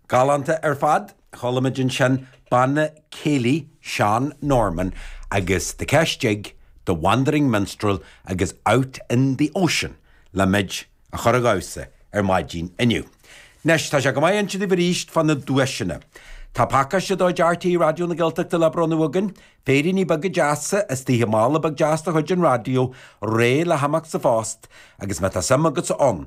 Galánta ar fad. Chuala muid ansin Banna Céilí Seán Norman agus The Kesh Jig, The Wandering Minstrel agus Out in the Ocean le muid a chur a dhamhsa ar maidin inniu. Anois, tá sé go maith insint daoibh arís fá na duaiseanna. Tá pacáiste de chuid RTÉ Raidió na Gaeltachta le bronnadh againn, féiríní beaga deasa istigh i mála beag deas de chuid an raidió, réidh le himeacht sa phost, agus má tá suim agatsa ann,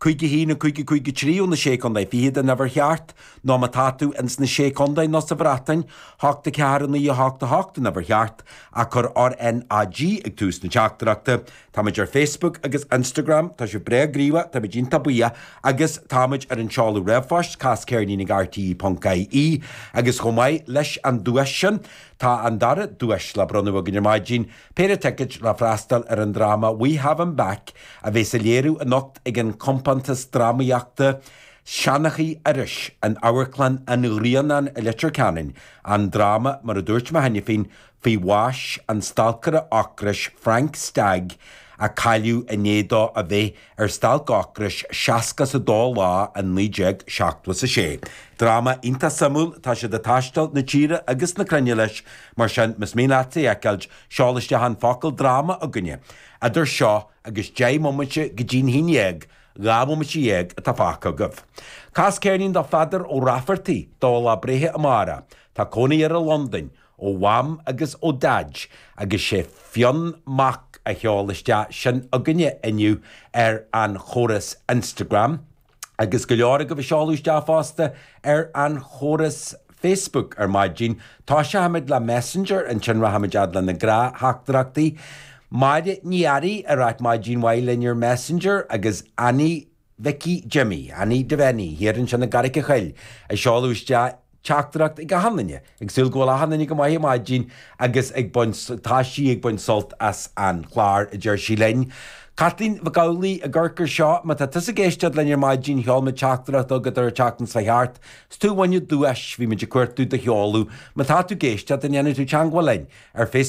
Cúig a haon a cúig a cúig a trí ó na Sé Chontae Fichead an uimhir cheart, nó má tá tú ins na Sé Chontae nó sa Bhreatain, hocht a ceathair a naoi a hocht a hocht an uimhir cheart, ach cuir RNAG ag tús na teachtaireachta. Táimid ar Facebook agus Instagram, tá sibh breá gníomhach, táimid iontach buíoch, agus táimid ar an tseoladh ríomhphoist, cas ceirnín ag RTÉ ponc ie, agus chomh maith leis an duais sin, tá an dara duais le bronnadh againn ar maidin, Péire ticeid le freastal ar an dráma We Have Him Back a bheas á léiriú anocht ag an chompántas drámaíochta Seanchaí Iorrais in Amharclann an Ghrianáin i Leitir Ceanainn, an dráma, mar a dúirt mé cheana féin, faoi bhás an stalcaire ocrais Frank Stagg a cailleadh i ndiaidh dó a bheith Ar Stailc Ocrais seasca is a dó lá i naoi déag seachtó is a sé. Dráma iontach suimiúil, tá siad ag taisteal na tíre agus na cruinne leis, mar sin más mian leat é a fheiceáilt, seol isteach an focal 'dráma' chugainne idir seo agus deich mbomaite go dtí'n haon dhéag, dhá bhomaite dhéag atá fágtha agaibh. Cas ceirnín do Pheadar Ó Raifeartaigh, do lá breithe amárach. Tá cónaí air i Londain. ó Mham agus ó Dhaid agus sé Fionn Mac a sheol isteach sin chugainne inniu ar an chóras Instagram agus go leor agaibh ag seoladh isteach fosta ar an chóras Facebook ar maidin. Toiseochaimid le Messenger, ansin rachaimid fhad le na gnáthteachtaireachtaí. Máire Ní Fhearraigh ag ráit maidin mhaith linn ar Messenger agus Annie. Mhicí Jimmy, Annie Devenny, thiar ansin i gCarraic an Choill, ag seoladh isteach teachtaireacht chuig achan duine ag súil go bhfuil achan duine go maith ar maidin agus ag baint, tá sí ag baint sult as an chlár, a deir sí linn. Caitlín Mhic Amhlaigh i gCorcaigh seo, má tá tusa ag éisteacht linn ar maidin, sheol muid teachtaireacht chugat ar an tseachtain seo thart, 's tú a bhain duais, bhí muid ag cuartú do sheoladh, má tá tú ag éisteacht, an ndéanfaidh tú teangmháil linn ar Face.